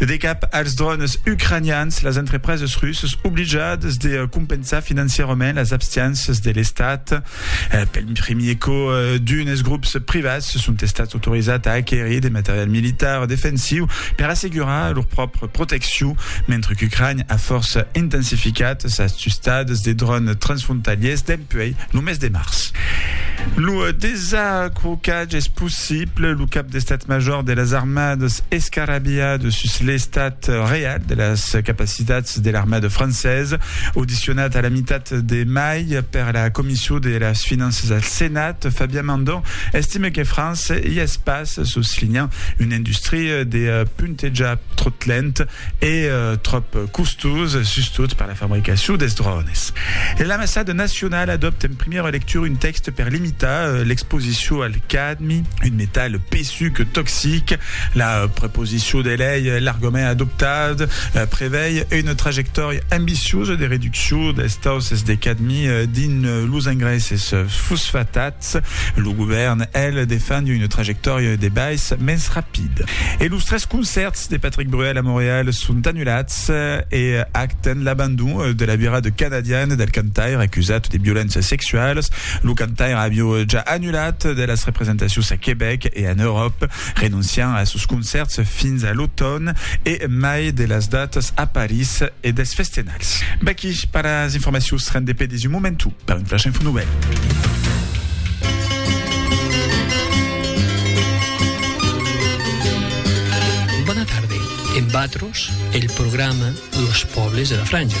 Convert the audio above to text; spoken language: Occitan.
De cap als drònes ucranians, las entrepreses russas oblijadas de compensar financièrament las abstiénças de l'Estat. Pel primier còp, d'unes grops privats son estats autorizats a aquerir de material militar defensiu per assegurar lor pròpria proteccion, mentre qu'Ucrània a fòrça intensificat sas tustadas de drònes transfrontalièrs dempuèi lo mes de març. Lo desacrocatge es possible. Siple, lo cap d'estat major de las armadas escarabia de sus l'estat real de las capacitats de l'armada francesa, audicionat a la mitat de mai per la Comission de las Finanças al Senat, Fabien Mandon estime que França i es pas, soslinhant una industria de puntejar tròt lent. e tròp costós, sustot per la fabricacion dels drònes. L'Ambassada nacionala adòpta en primièra lectura un tèxte per limitar l'exposicion al cadmi, un metal pesuc toxic. La proposicion de lei, largament adoptat, prevei una trajectòria ambiciosa de reduccion dels tausses de cadmi dins los engraisses fosfatat. Estats. Lo govèrn, el, defend una trajectòria de bais mens rapida. E los tres concèrts de Patrick Bruel a Montreal son anulats e acten l'abandon de la vira de canadian del cantaire acusat de violéncias sexualas. Lo cantaire aviá ja anulat de las representacions a Quebec e en Euròpa. Renoncian a sos concèrts fins a l'automn e mai de las datas a París e dels festenals. Vaqui per las informacions, rend de pedis un momentu per un flash info novèl. Bona tarde, en Vatros, el programa de los pòbles de la Franja.